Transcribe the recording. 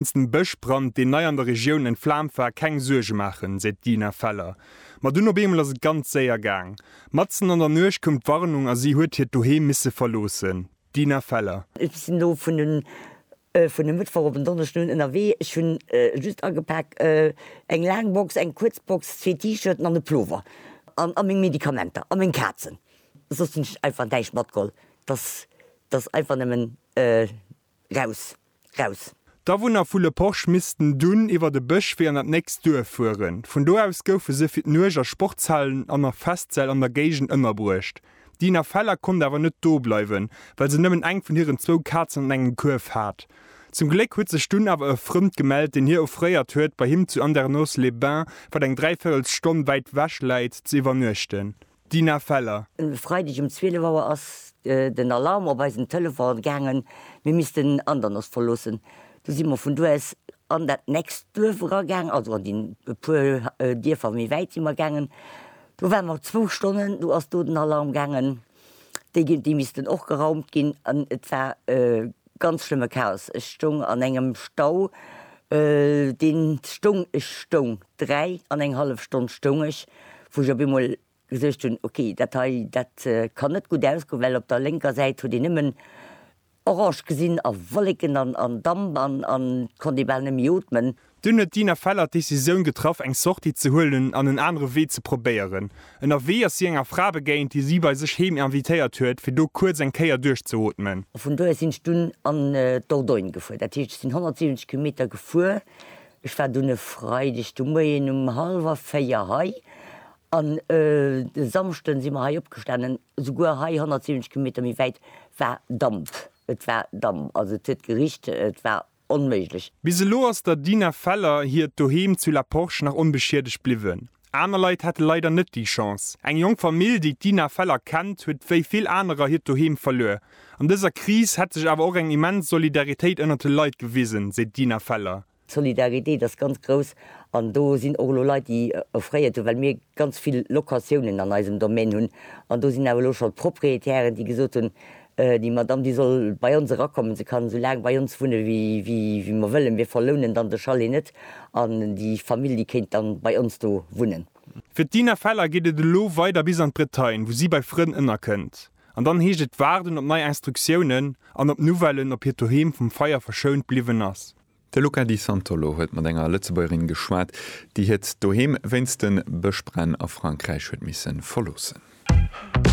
Wéinst dem Bëschbrand, deen nei an der Regioun entflaamt war, keng Suerge maachen, seet d'Dina Feller. Ma dunn op eemol ass et ganz séier gaang. Matzen an der Nuecht koum d'Warnung a si huet hiert Doheem misse verloossen. D'Dina Feller. Ech sinn elo vun e Mëttwoch op en Donneschden un ënnerwee. Ech hu just agepak eng laang Box, eng kuerz Box, zwee T-Shirten an e Plover a meng Medikamenter a meng Kazen. Soss hunn ech einfach näischt matgeholl. Dass einfach nëmmen Raus! Raus! D'Awunner vu Le Porche missten dunn iwwert e Bësch Wee an dat nächst Duerf fueren. Vun do aus goufe se fir d'Nuecht a Sportshallen an a Festsäll an der Géigend ënnerbruecht. D'Dina Feller konnt awer net do bleiwen, well se nëmmen eng vun hiren zwou Kazen an engem Kuerf hat. Zum Gléck huet sech dunn awer e Frënd gemellt, deen hir offréiert huet, bei him zu Andernos-les-Bains, wat eng dräi Véirels Stonn wäit wech läit, ze iwwernuechten. D'Dina Feller. E Freideg um 12 Auer ass den Alarm op eisen Telefon gaangen, mir missten Andernach verloossen. Du si mer vun do aus an dat nächst Duerf eragaangen, also an déi e puer Dierfer méi wäit si mer gaangen. Do ware mer zwou Stonnen, du ass do den Alarm gaangen, déi missten och geraumt ginn an et war Ganz schlëmme Chaos, ech stoung an engem Stau, deen stoung, ech stoung, dräi an eng hallef Stonn stoung ech, wou ech op eemol gesicht hunn, ok, dat hei, dat kann net gutt ausgoen, well op der lénker Säit huet een nëmmen orange gesinn a Wolleken an Damp an konnt ee bal net méi ootmen. Dunn huet d'Dina Feller d'Decisioun getraff, eng Sortie ze huelen an en anere Wee ze probéieren. Ënnerwee ass si enger Fra begéint, déi si bei sech heem invitéiert huet, fir do kuerz eng Kéier duerchzeootmen. A vun do aus sinn ech dunn an d'Dordogne gefuer. Dat heescht, ech sinn 170 Kilometer gefuer. Ech war dunn e Freideg de Moien um hallwer véier hei an e Samschden si mer hei opgestanen. Souguer hei, 170 Kilometer méi wäit, war Damp. Et war Damp, also et huet gericht, et war onméiglech. Bis elo ass der Dina Feller hiert Doheem zu La Porche nach onbeschiedegt bliwwen. Aner Leit hate leider net déi Chance. Eng jonk Famill, déi d'Dina Feller kennt, huet wéi vill anerer hiert Doheem verluer. An dëser Kris hätt sech awer och eng immens Solidaritéit ënnert de Leit gewisen, seet d'Dina Feller. D'Solidaritéit ass ganz grouss an do sinn och elo Leit, déi offréiert hunn, well mir ganz vill Locatiounen an eisem Domaine hunn. An do sinn awer elo scho Proprietären, déi gesot hunn, Déi Madamm, déi soll bei ons erakommen, se kann esou laang bei ons wunne wéi mer wëllen, mir verlounen dann de Chalet net an déi Famill, déi kéint dann bei ons do wunnen. Fir d'Dina Feller geet et elo weider bis an d'Bretagne, wou si bei Frënn ënnerkënnt. An dann heescht et waarden op nei Instruktiounen an op Nouvellen, ob hiert Doheem vum Feier verschount bliwwen ass. De Luca Di Santolo huet mat enger Lëtzebuergerin geschwat, déi hiert Doheem wéinst de Bëschbränn a Frankräich huet misse verloossen.